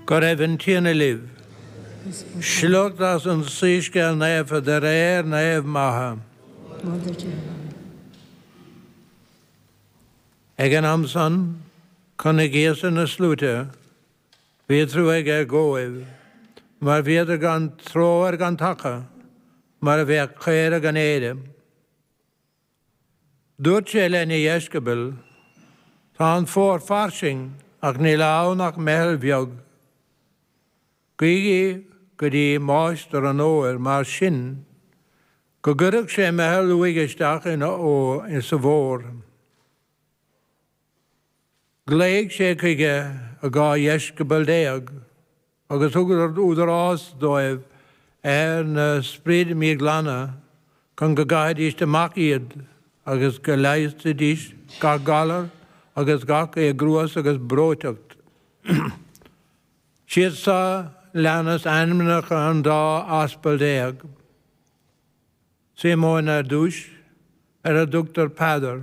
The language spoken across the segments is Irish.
Go raibh an Tiarna libh. Sliocht as an Soíscéal Naofa de réir Naomh Matha. Ag an am san, chonaic Íosa na sluaite. Bhí trua aige dhóibh, mar bhíodar gan treoir gan taca, mar a bheadh caora gan aoire. Dúirt sé lena dheisceabail, Tá an fómhar fairsing ach níl ann ach meitheal bheag. Guígí go dtí máistir an fhómhair mar sin go gcuirfeadh sé meitheal uaidh isteach insa bhfómhar. Ghlaoigh sé chuige a dhá dheisceabal déag. agus thug údarás dóibh ar na spridí míghlana chun go gcaithfidíst amach iad agus go leigheasfaidís gach galar agus gach éagruas agus breóiteacht. Siad so leanas ainmneacha an dá aspal déag. Síomón ar dtúis, ar a dtugtar Peadar.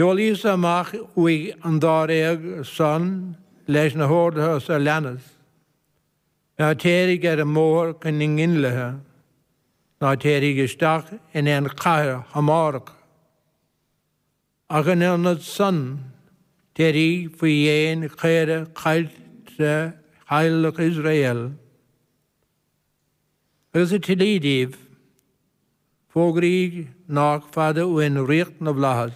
Sheol Íosa amach uaidh an dáréag san leis na horduithe so leanas, Ná téirigh ar an mbóthar chun na ngintlithe, ná téirigh isteach in aon chathair Shamárach, ach in ionad san, téirigh faoi dhéin caorach caillte theaghlach Iosrael. Agus sa tslí díbh, fógraíg nách fada uainn ríocht na bhFlaitheas.